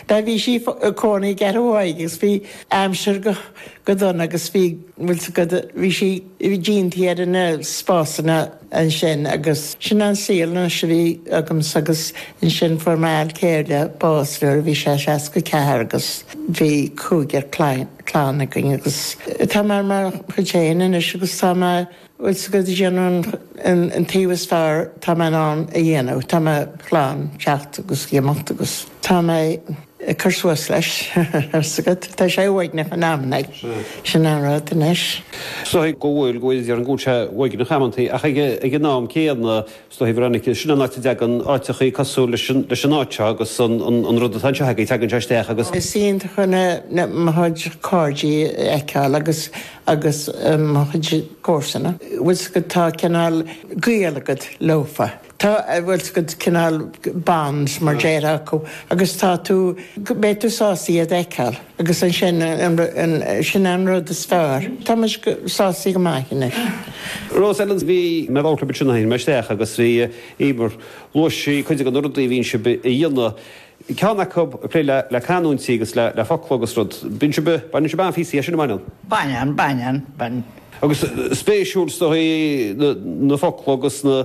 Tá bhí sí i gcónaí i gceithre uaigh agus bhí aimsir go dona agus bhí bhfuil 's agat bhí sí bhí dianta ar na spásanna ansin agus sin an saol anois a bhí agamsa agus ansin fuair m'fhear céile bás nuair a bhí sé seasca a ceathair agus bhí cúigear clainne againn agus tá mé ar mo chuid féin anois agus tá mé Bhfuil 's agat, ag déanamh an taobh is fearr atá mé in ann a dhéanamh, tá mé in ann teacht agus ag imeacht agus tá mé ag cur suas leis, tá 's agat. Tá sé uaigneach in amannaí. Sin an rud anois. Go bhfuil, go bhfuil, go bhfuil, go bhfuil sé uaigneach amantaí ach ag an am céanna. Stothí Veronica, Sin an áit a dtagann áiteachaí cosúil leis an áit seo agus an rud atá anseo againn, tagann sé isteach agus. Is iontach mo chuid cairde a fheiceáil agus agus mo chuid comharsana bhfuil 's agat tá cineál gaol agat leofa. Tá bhfuil 's agat cineál bonds mar déarfá acu agus tá tú beidh tú sásta iad a fheiceáil. Agus ansin, sin an rud is fearr. Tá muid sásta go maith anois. Bhí mé bhocht bit sin a tháinig mé isteach agus bhí Emer luaigh sí cuid den rudaí a bhíonn sib a dhéanamh. Ceann acu ag plé le le canúintí agus le le focla agus rud. Bíonn sib baineann sib an-spraoi as sin, an mbaineann? Baineann, baineann, baineann. Agus spéisiúil is dóigh na na focla agus na.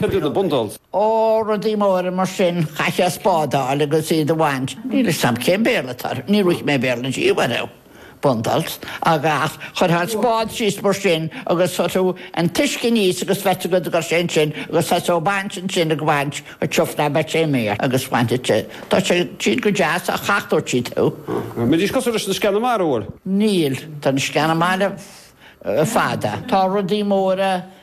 Cad iad na bundalls? Ó, rudaí móra mar sin. Chaithfeá a spádáil agus iad a bhaint. Níl 'fhios a'm cén Béarla atá ar, ní bhfuair mé Béarla inti, whatever. Bundalls. Ach chuirfeá an spád síos mar sin agus chuireadh an t-uisce aníos agus bheadh agat a gcur sé ansin agus chaithfeá a bhaint ansin ag bhaint go tiubh ná beadh sé méir agus bhainfeadh sé, tá sé, siad go deas ach thachtódh siad thú. Mbídís cosúil leis na sceana mara, bhfuil? Níl, tá na sceana mara fada. Tá rudaí móra